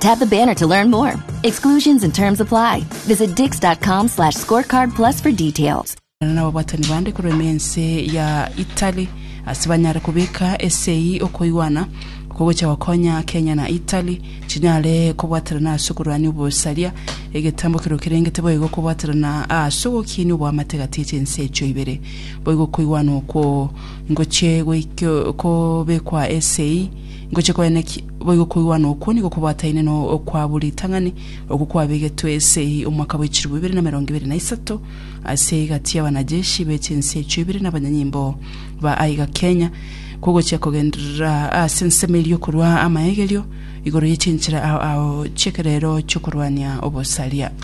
Tap the banner to learn more. Exclusions and terms apply. Visit dix.com slash scorecard plus for details. n'ababatani bande korema ense ya Italy ase banyare kobeka esei okoigwana oko gocha gokonya Kenya na Italy chinyare kobwaterana ase okorwania obosaria egetambo kero kerengete boigo kobwaterana ase ogokinia oboamate gati ya chinse echio ibere boigo okoigwana okwo ngochie goikio kobekwa esei ngochie koenekia Boigo koigwana okwo nigo kobwataine no kwa bwo ritang'ani okwo kwabegetwe ase eyi omwaka bwe chilifu ibere na merongo ibere na isato ase egati y'abanajeshi be chinse echio ibere na abanyanyimbo ba aiga Kenya kogochia kogenderera ase ensemo eria okorua amaegerio igoro ye chinchera ao ao chi'ekerero chi'okorwania obosaria.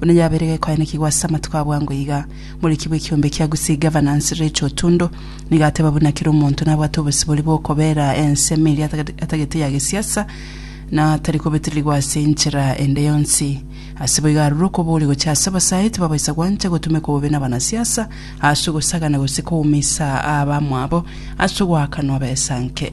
Buna yabeire gekoanekigwa ase amatuko a bwango iga, omoriki bw'ekiombe kia Gusii Governance, Rachel Otundo, nigo ateba buna kera omonto nabwate obosibori bw'okobera ensemo eria atagete ya gesiasa na tari kobetererigwa ase enchera ende yonsi. Ase boigo arure okoboria gochia ase abasae tibabaisa gwancha gotumeka bobe nabanasiasa ase ogosagana gose koumisa abamwabo ase ogoakanwa besa nke.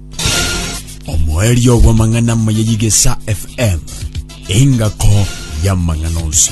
omoerio bw'amang'ana amaya y'Igesa FM, engako y'amang'ana onsi.